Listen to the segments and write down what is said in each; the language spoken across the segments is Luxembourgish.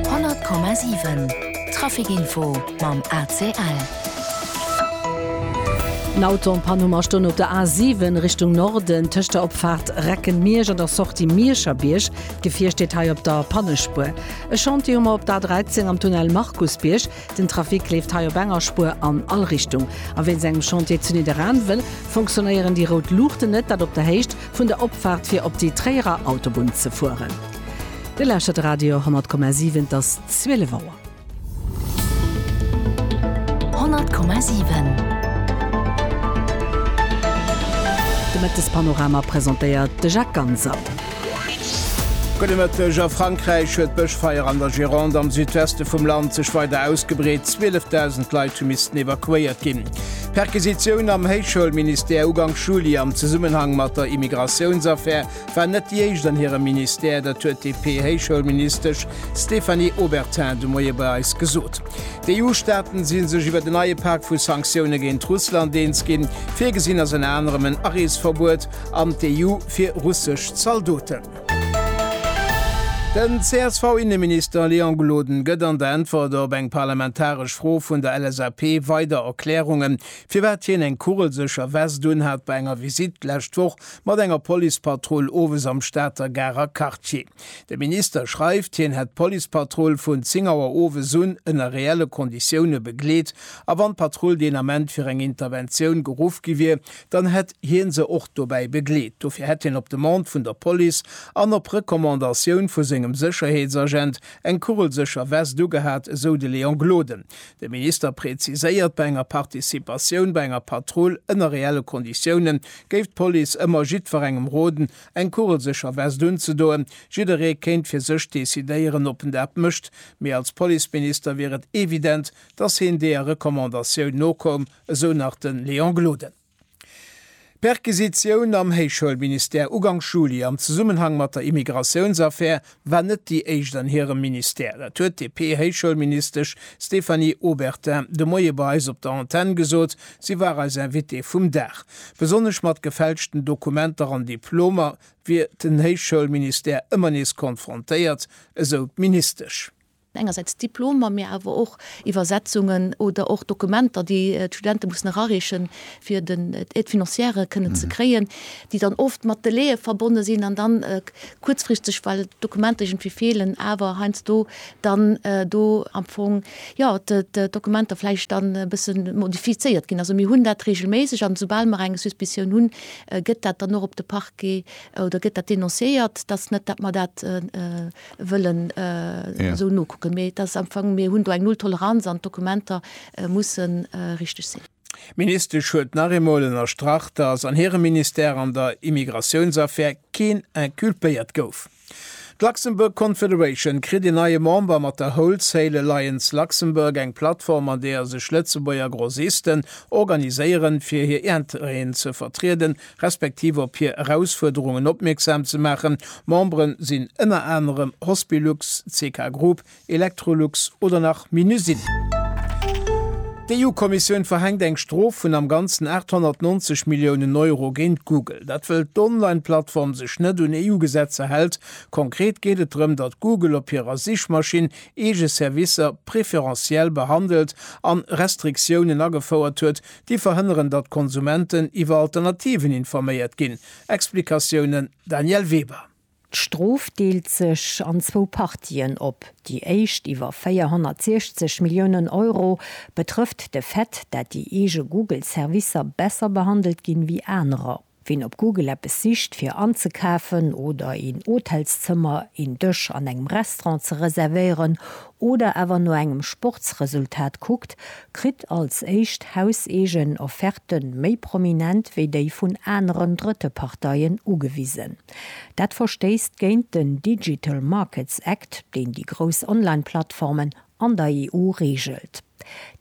100,7 Trafic Info mam ACL. En Auto am Panne mar stoung op der A7 Richtung Norden tëscht der Opfaart Reckenmiersch an der Sortie Miescherbierg. D'Gefier steet hei op der Pannespuer. E Chantier hu mer op der A13 am Tunnel Markusbierg. Den Trafic leeft hei op enger Spuer an all Richtung. A wéinst engem Chantier zu Nidderaanwen fonctionnéieren déi rout Luuchten net, dat op der Héicht vun der Opfaart fir op déi Tréierer Autobunn ze fueren. Dir lauschtert Radio 10,7, et ass 12 Auer. 10,7 De Mëttespanorama presentéiert de Jacques Ganser. Gudde Mëtteg, A Frankräich huet d'Bëschfeier an der Gironde am Südweste vum Land sech weider ausgebreet. 12.000 Leit hu missten evakuéiert ginn. D'Perquisitioun am Héichschoulministère uganks Juli am Zesummenhang mat der Immigratiounsaffär war net déi éischt an hirem Ministère. Dat huet d'DP-Héichschoulministesch Stéphanie Obertin de Moie bei eis gesot. D'EU-Staaten si sech iwwert en neie Pak vu Sanktioune géint Russland eens ginn. Virgesinn ass ënner anerem en Areesverbuet an d'EU fir russesch Zaldoten. Den CSV-Inneminister Léon Gloden gëtt an der Äntwert op eng parlamentaresch Fro vun der LSAP weider Erklärungen, firwat hien eng kugelsécher Vest unhat bei enger Visitt d'lescht Woch mat enger Policepatrull owes am Stater Garer Quartier. De Minister schreift, hien hätt d'Policepatrull vun 10 Auer owes un ënner reelle Konditioune begleet a wann d'Patrull deen Ament fir eng Interventioun geruff gi wier, dann hätt hie se och dobäi begleet. Dofir hätt hien op Demande vun der Police an op Recommandatioun vu sengem Sécherheetsagent eng kugelsécher Vest ugehat, esou de Léon Gloden. De Minister preziséiert, bei enger Participatioun bei enger Patrull ënner reelle Konditioune géif d'Police ëmmer jiddwerengem roden, eng kugelsécher Vest unzedoen. Jidderee kéint fir sech decidéieren, ob en dat mécht, mee als Policeminister wier et evident, datt hien deeër Recommandatioun nokoum. esou nach de Léon Gloden. D'Perquisitioun am Héichschoulministère ugank Juli am Zesummenhang mat der Immigratiounsaffär war net déi éischt an hirem Ministère. Dat huet d'DP-Héichschoulministesch Stéphanie Obertin de Moie bei eis op der Antenn gesot. Si war eis Invitée vum Dag. Besonnesch mat gefälschten Dokumenter an Diplomer wier den Héichschoulministère ëmmer nees konfrontéiert, esou d'Ministesch. engersäits Diplomer, mee awer och Iwwersetzungen oder och Dokumenter, déi d'Studente mussen erareechen, fir den Aide financière kënnen ze kréien, déi dann oft mat Delaie verbonne sinn an dann kuerzfristeg, well d'Dokumenter iergendwéi feelen, awer heiansdo dann do am Fong, jo, d'Dokumenter vläicht dann e bësse modifizéiert ginn. Also mir hunn dat reegelméisseg an esoubal mer eng Suspicion hunn, gëtt dat dann och op de Parquet oder gëtt dat denonciéiert, dass net, dat mer dat, wëllen esou nokucken. Mee et ass am Fong, mir hunn do eng Nulltoleranz an d'Dokumenter musse richteg sinn. D'Ministesch huet nach eemol ënnerstrach, datt an hirem Ministère an der Immigratiounsaffär keen inculpéiert gouf. D'Luxembourg Confederation kritt een neie Member mat der Wholesale Alliance Luxembourg, eng Plattform an deeër sech Lëtzebuerger Grossisten organiséieren, fir hir Interêten ze vertrieden, respektiv op hir Erausfuerderungen opmierksam ze maachen. Memberen sinn ënner anerem Hospilux, CK Group, Electrolux oder nach Minusine. D'EU-Kommissioun verhänkt eng Strof vun am Ganzen 890 Milliounen Euro géint Google. Dat wëll d'Online-Plattform sech net un EU-Gesetzer hält. Konkret geet et drëm, datt Google op hirer Sichmaschinn eege Servicer preferentiel behandelt an Restriktiounen agefouert huet, Déi verhënneren, datt d'Konsumenten iwwer Alternativen informéiert ginn, Explikatiounen, Danièle Weber. D'Strof deelt sech an zwou Partien op. Déi éischt, iwwer 460 Milliounen Euro, betrëfft de Fait, dat déi eege Google-Servicer besser behandelt ginn, wéi anerer. Ween op Google eppes sicht fir anzekafen oder een Hotelszëmmer, een Dësch an engem Restaurant ze reservéieren oder awer no engem Sportsresultat kuckt, kritt als éischt hauseegen Offerte méi prominent wéi déi vun aneren drëtte Parteien ugewisen. Dat verstéisst géint den Digital Markets Act, deen déi grouss Online-Plattformen an der EU reegelt.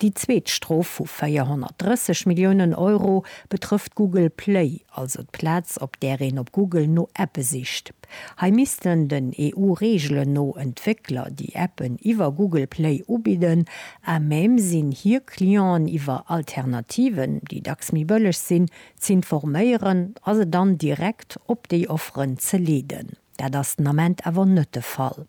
Déi zweet Strof vu 430 Milliounen Euro betrëfft Google Play, also d'Plaz op där een op Google no Appe sicht. Hei missten den EU-Reegelen no Entwéckler, déi Appen iwwer Google Play ubidden, à même sinn hir Clienten iwwer Alternativen, déi dacks méi bëlleg sinn, z'informéieren a se dann direkt op déi Offeren ze leeden. Dat ass den Ament awer net de Fall.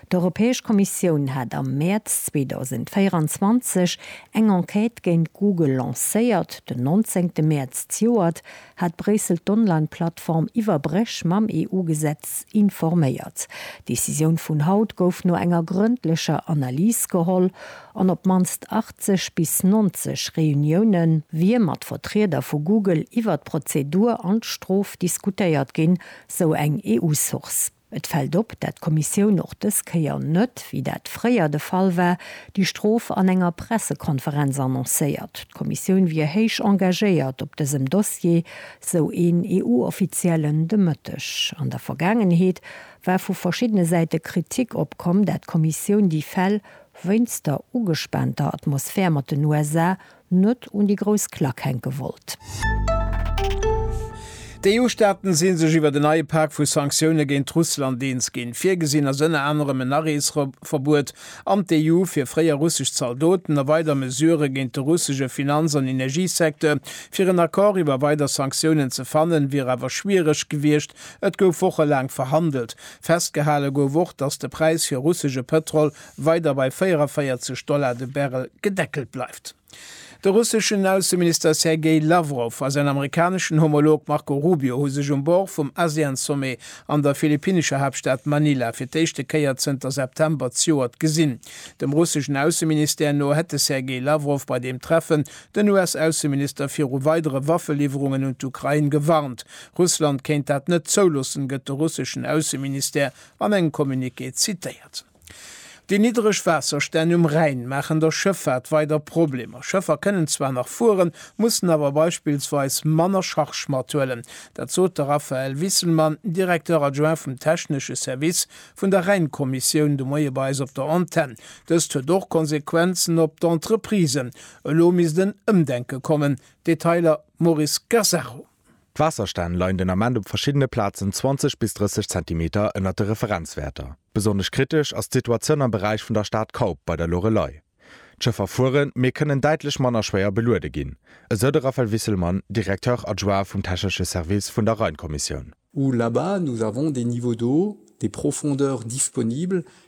D'Europäesch Kommissioun hat am Mäerz 2024 eng Enquête géint Google lancéiert. Den nonzéngte Mäerz d'Joert hat Bréissel d'Online-Plattform iwwer Bréch mam EU-Gesetz informéiert. D'Decisioun vun haut gouf no enger grëndlecher Analys geholl an op d'mannst 80 bis 90 Reunioune wier mat Vertrieder vu Google iwwer d'Prozedur an d'Strof diskutéiert ginn, sou eng EU-Source. Et fält op, dat d'Kommissioun och dës Kéier net, wéi dat fréier de Fall war, déi Strof an enger Pressekonferenz annoncéiert. D'Kommissioun wier héich engagéiert op dësem Dossier, sou een EU-Offiziellen de Mëtteg. An der Vergaangenheet war vu verschiddene Säite Kritik opkomm, dat d'Kommissioun déi Fäll wéinst der ugespaanter Atmosphär mat den USA net un déi grouss Klack hänke wollt. D'EU-Staaten si sech iwwer en neie Pak vu Sanktioune géint Russland eens ginn. Virgesinn ass ënner anerem en Areesverbuet an d'EU fir fréier russesch Zaldoten a weider Mesurë géint de russesche Finanz an Energiesecteur. Fir en Accord iwwer weider Sanktiounen ze fannen, wier awer schwiereg gewiescht. Et gouf wochelaang verhandelt. Festgehale gouf och, datt de Präis fir russesche Pëtrol weider bei 44 Dollar de Barrel gedeckelt bleift. De russeschen Ausseminister Sergei Lawrow a säin amerikaneschen Homolog Marco Rubio hu sech um Bord vum ASEAN-Sommet an der philippinescher Haaptstad Manila fir d'éischte Kéier zënter September d'Joert gesinn. Dem russeschen Ausseministère no hätt de Sergei Lawrow bei deem Treffen den US-Ausseminister viru weidere Waffeliwwerungen un d'Ukrain gewarnt. Russland kéint dat net zouloossen, gëtt de russeschen Ausseministère an engem Communiqué zitéiert. Déi niddereg Waasserstänn um Rhäin maachen der Schëffaart weider Problemer. Schëffer kënnen zwar nach fueren, mussen awer beispillsweis manner Charge mathuelen. Dat sot de Raphaël Wisselmann, Directeur adjoint vum technesche Service vun der Rhäin-Kommissioun de Moie bei eis op der Antenn. Dëst huet och Konsequenzen op d'Entreprisen. Elo misst en Ëmdenke kommen. Detailer Maurice Gasarro. D'Waasserstänn leien den Ament op verschiddene Plazen 20 bis 30 Zentimeter ënnert de Referenzwäerter. Besonnesch kritesch ass d'Situatioun am Beräich vun der Stad Kaup bei der Loreley. D'Schëffer fueren, mee kënnen däitlech manner schwéier beluede ginn, esou de Raphaël Wisselmann, Directeur adjoint vum technesche Service vun der Rheinkommissioun. où là-bas nous avons des niveaux d'eau, des profondeurs disponibles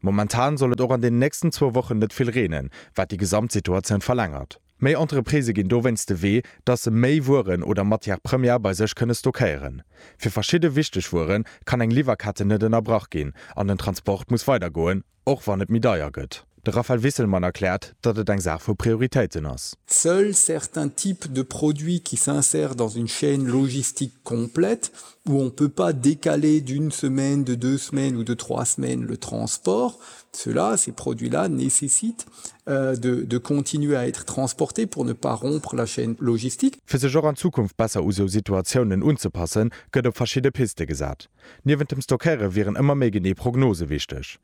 Momentan soll et och an den nächsten zwou Wochen net vill reenen, wat déi Gesamtsituatioun verlängert. Méi Entreprisë ginn dowéinst de Wee, dass se méi Wueren oder Matière Première bei sech kënne stockéieren. Fir verschidde wichteg Wuere kann eng Liwwerketten net ënnerbrach ginn an den Transport muss weidergoen, och wann et méi deier gëtt. De Raphaël Wisselmann erkläert, datt et eng Saach vu Prioritéiten ass. Seuls certains types de produits qui s'insèrent dans une chaîne logistique complète, où on peut pas décaler d'une semaine, de deux semaines ou de trois semaines le transport, cela, ces produits-là nécessitent de de continuer à être transportés pour ne pas rompre la chaîne logistique. Fir sech och an Zukunft besser u sou Situatiounen unzepassen, gëtt op verschidde Piste gesat. Niewent dem Stockéiere wieren ëmmer méi genee Prognose wichteg.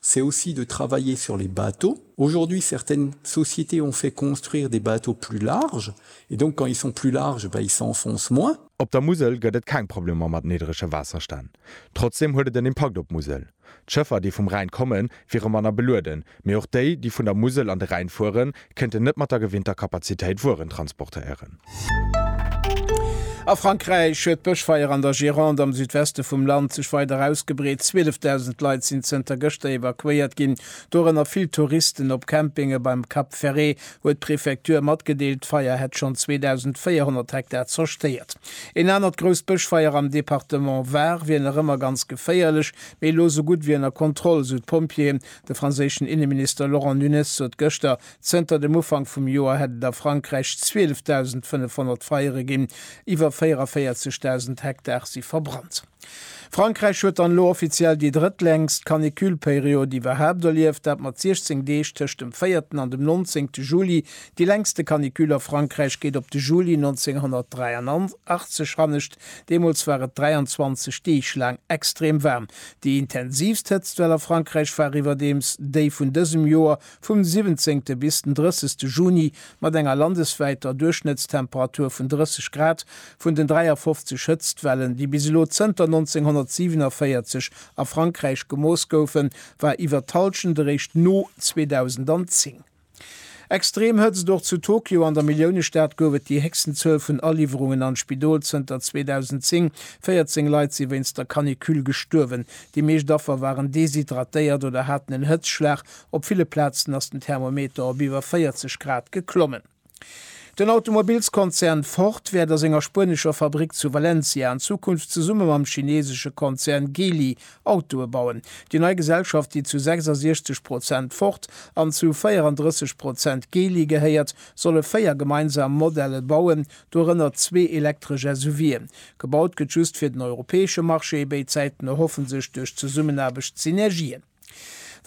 C'est aussi de travailler sur les bateaux. Aujourd'hui certaines sociétés ont fait construire des bateaux plus larges et donc quand ils sont plus larges, ben ils s'enfoncent moins. Op der Musel gëtt et keng Problemer mat niddrege Waasserstänn. Trotzdem huet et en Impakt op d'Musel. D'Schëffer, déi vum Rhäin kommen, wiere manner belueden, mee och déi, déi vun der Musel an de Rhäin fueren, kënnt en net mat der gewinnter Kapazitéit Wueren transportéieren. A Frankräich huet d'Bëschfeier an der Gironde am Südweste vum Land sech weider ausgebreet. 12.000 Leit sinn zënter gëschter evakuéiert ginn, dorënner vill Touristen. Op Campinge beim Cap Ferret huet d'Prefektur matgedeelt, d'Feier hätt schonn 2.400 Hektar zerstéiert. Een anert grousst Bëschfeier am Departement Var wier nach ëmmer ganz geféierlech, mee elo sou gutt wéi ënner Kontroll, sou d'Pompjeeën. De franséischen Inneminister Laurent Nunez sot gëschter, zënter dem Ufank vum Joer hätt et a Frankräich 12.500 Feiere ginn, iwwer 44.000 Hektar si verbrannt. Frankräich huet dann elo offiziell déi drëttlängst Canicule-Period iwwerhaapt erlieft, dat mat 16 Deeg tëscht dem véierten an dem nonzéngte Juli. Déi längste Canicule a Frankräich geet op de Juli 1983 hannescht, Deemools war et 23 Deeg laang extrem waarm. Déi intensiivst Hëtztwell a Frankräich war iwwerdeems déi vun dësem Joer, vum 17. bis den 30. Juni, mat enger landeswäiter Duerchschnëttstemperatur vun 30 Grad, vun den 53 Hëtztwellen, déi bis elo zënter 1947 a Frankräich gemooss goufen, war iwwer d'Hallschent eréischt no 2010. Extrem Hëtzt, Och zu Tokio an der Milliounestad gouf et déi héchsten Zuel vun Aliwwerungen an d'Spidol zënter 2010. 14 Leit si wéinst der Canicule gestuerwen. Déi meescht Affer waren deshydratéiert oder haten en Hëtzschlag. Op ville Plazen ass den Thermometer op iwwer 40 Grad geklommen. Den Automobilskonzern Ford wäert a senger spuenescher Fabrick zu Valencia an Zukunft zesumme mam chineesesche Konzern Geely Autoe bauen. Déi nei Gesellschaft, déi zu 66 Prozent Ford an zu 34 Prozent Geely gehéiert, solle véier gemeinsam Modelle bauen, dorënner zwee elektresch SUVe. Gebaut gëtt just fir den europäesche Marché, béid Säiten erhoffen sech duerch Zesummenaarbecht Synergien.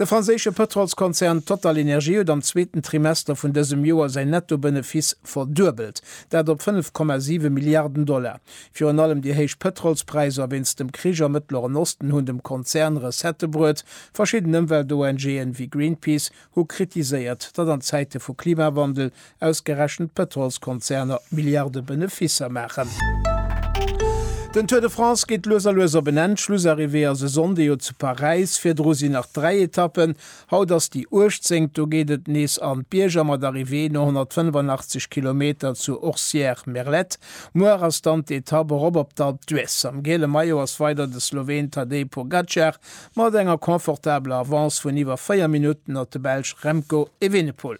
De franséische Pëtrolskonzern TotalEnergies huet am zweeten Trimester vun dësem Joer säin Netto-Benefiss verduebelt, dat op 5,7 Milliarden Dollar. Virun allem déi héich Pëtrolspräisser wéinst dem Krich am Mëttleren Osten hunn dem Konzern Recettë bruet. Verschidden Ëmwelt-ONG'en, wéi Greenpeace, hu kritiséiert, datt an Zäite vu Klimawandel ausgerechent d'Pëtrolskonzerner Milliarde Beneficer maachen. Den Tour de France geet lues a lues op en Enn. D'Schlussarrivée ass e Sonndeg, jo zu Paräis. Virdru sinn nach dräi Etappen. Haut ass déi Uechtzéngt, do geet et nees an d'Bierger mat Arrivée no 185 Kilometer zu Orcières-Merlet. Muer ass dann d'Etapp erop op d'Alpe d'Huez. Am giele Maillot ass weider de Sloween Tadej Pogacar mat enger confortabler Avance vun iwwer 4 Minutten op de Belsch Remco Evenepoel.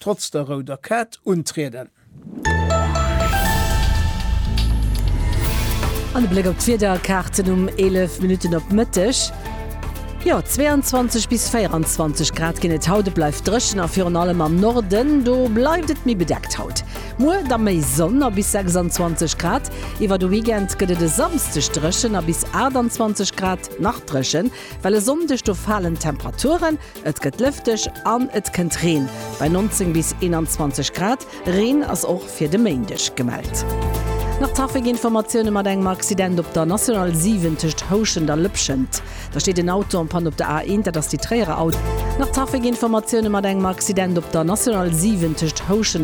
Trotz der rouder Kaart untrieden. An e Bléck op d'Wiederkaarten um 11 Minutten op Mëtteg. Jo, 22 bis 24 Grad ginn et haut. Et bleift dréchen a virun allem am Norden, do bleift et méi bedeckt haut. Muer da méi Sonn a bis 26 Grad. Iwwer de Weekend gëtt et e Samsdeg dréchen a bis 28 Grad nach dréchen, well e Sonndeg do falen d'Temperaturen. Et gëtt lëfteg an et kënnt Reen, bei 19 bis 21 Grad. Reen ass och fir de Méindeg gemellt. Nach Trafikinformatioune mat engem Accident op der National 7 tëscht Houschent a Lëpschent. Da steet en Auto en Panne op der A1, dat ass déi Tréierer Autobunn. Nach Trafikinformatioune mat engem Accident op der National 7 tëscht Houschent.